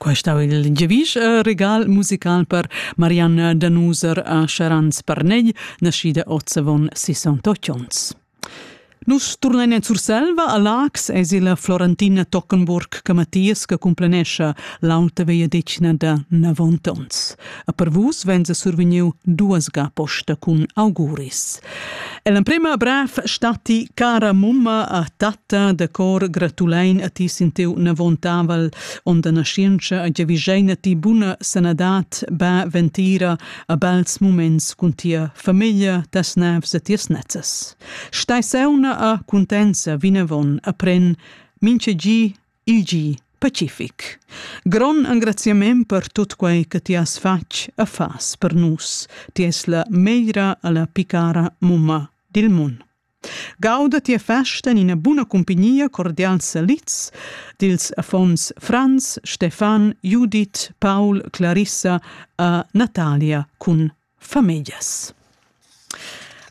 Quai stau il giavisch e regal musical per Marianne Danuser a Charanz Parnegl, naschida oz avon 68 onns. Nus turnein en Surselva a Lax es il Florentina Tockenburg che Matthias che cumplenescha l'auta vegliadetgna da 90 ons. A per vus venza survegniu duas ga posta cun auguris. E l'emprema bref stati cara mumma a tat ta da cor gratulein a ti sin teu navontavel on da nascienza a giavischeina ti buna sanadad ba ventira a bels moments cun tia famiglia tas navs e tias nezzas stai sauna a cuntenza vinavon a pren minche gi il gi pacific Gron engraziament per tut quei che ti has fatg e fas per nus ti es la meira alla picara mumma dil mund Gauda tia festa en ina buna cumpignia cordials salids dils affons Franz, Stefan, Judith, Paul, Clarissa e Natalia cun famillas.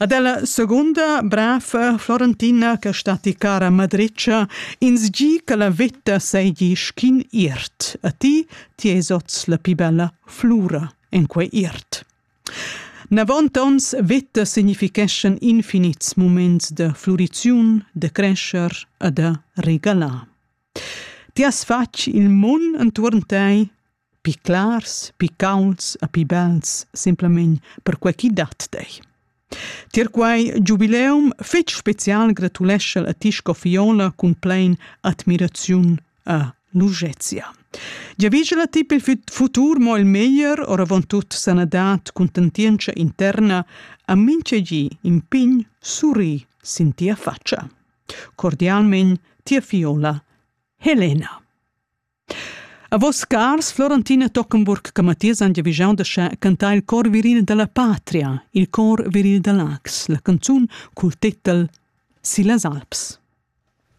Ad ella segunda brafa Florentina che stati cara madritscha ins gi che la vetta seigi schin iert a ti ti esots la pi bella flura en quei iert. Navontonts veta significheschan infinits muments da fluriziun, da crescher e da regalar. Ti has fatg il mun entuorn tei, pi clars, pi caulds e pi bels, simplamain perquai chi dat tei. Tier quei giubileum fetg special gratulescha a ti sco Fiola cun plein admiraziun a Lugezia. Giavigela ti per il futur mo il meglier, oravontut sanadad, contentientscha interna, a minchegi in pign surri sin tia faccia. Cordialmen, tia Fiola, Helena. A vos cars Florentina Tockenburg Camathias han giavischau da scha cantar il cor virin dalla patria, il cor virin da Laax, la canzun cul titel Si las Alps.